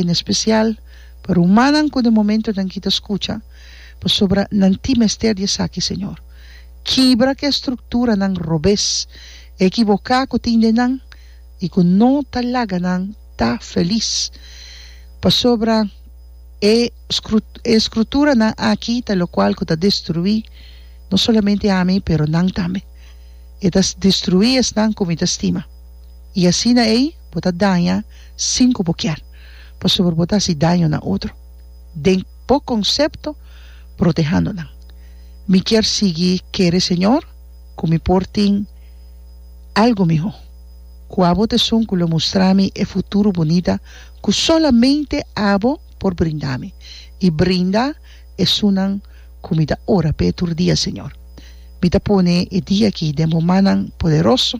en especial pa rumannan cu den momentonan kita scucha, pasobra nan tin mester di esaki Señor. Kibra cu estructuranan robes, equiboca cu tin den nan y cu no ta laga nan ta feliz, pasobra e escruturanan aki ta locual cu ta destrui no solamente ami pero nan tambe. E ta destrui esnan cu mi ta stima. Y asina ey. Bo ta daña sin ku bo kier, pasobra bo ta hasi daño na otro. Den bo konsepto, protehando nan. Mi kier sigui kere Señor ku mi por tin algu mihó. Ku abo ta esun ku lo mustra mi e futuro bunita ku solamente abo por brinda mi, i brinda esunnan ku mi ta ora p'e tur dia, Señor. Mi ta pone e dia aki den bo mannan poderoso.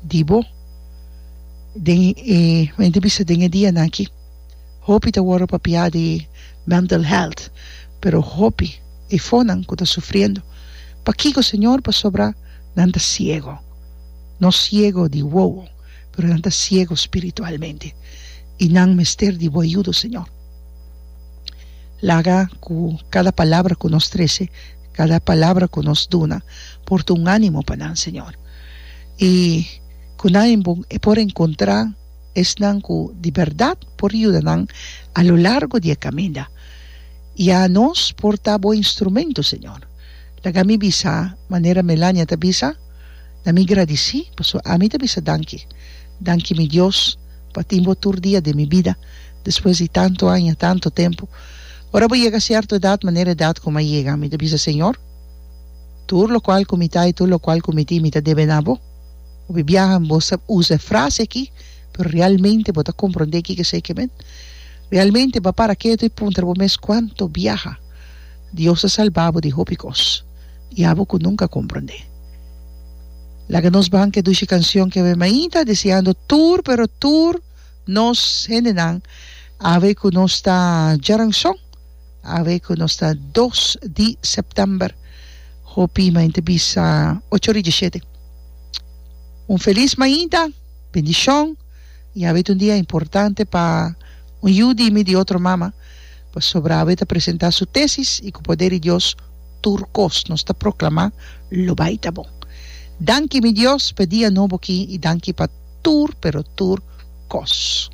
di bo. Den e mente bisa den e dianan aki hopi ta wòrdu papiá di mental health pero hopi e fonan ku ta sufriendo pakiko señor pasobra nan ta siego no siego di wowo pero nan ta siego spiritualmente i nan mester di bo ayudo señor laga ku kada palabra ku nos trese kada palabra ku nos duna por ta un ánimo pa nan señor. i ku nan en bon e por enkontrá esnan ku di bèrdat por yuda nan a lo largo di e kaminda. Ya nos por ta Bo instrumentu, Señor. Laga mi bisa manera Melania ta bisa, Na mi gradisí, pasobra ami ta bisa danki. Danki mi Dios pa tin Bo tur dia den mi bida, despues di tantu aña, tantu tempu. Ora bo yega sierto edat, manera edat ku mi a yega, mi ta bisa, Señor, Tur lokual ku mi ta i tur lokual ku mi tin mi ta debe na bo. Hopi biaha bo sa usa e frase aki, pero realmente bo ta komprondé kiko esei ke men? Realmente bo a para ketu i puntra bo mes kuantu biaha Dios a salba bo di hopi kos i abo ku nunka a komprondé? Laga nos ban ke dushi kanshon ke awe mainta deseando tur pero tur nos hendenan awe ku nos ta djaranshon. Awe ku nos ta dos di sèptèmber, hopi mainta bisa ocho ri djisiete un felis mainta, bendishon i awe ta un dia importante pa un yu di mi di otro mama pasobra awe ta presentá su tesis i ku poder di Dios tur kos nos ta proklamá lo bai ta bon. Danki mi Dios pa e dia nobo aki i danki pa tur pero tur kos.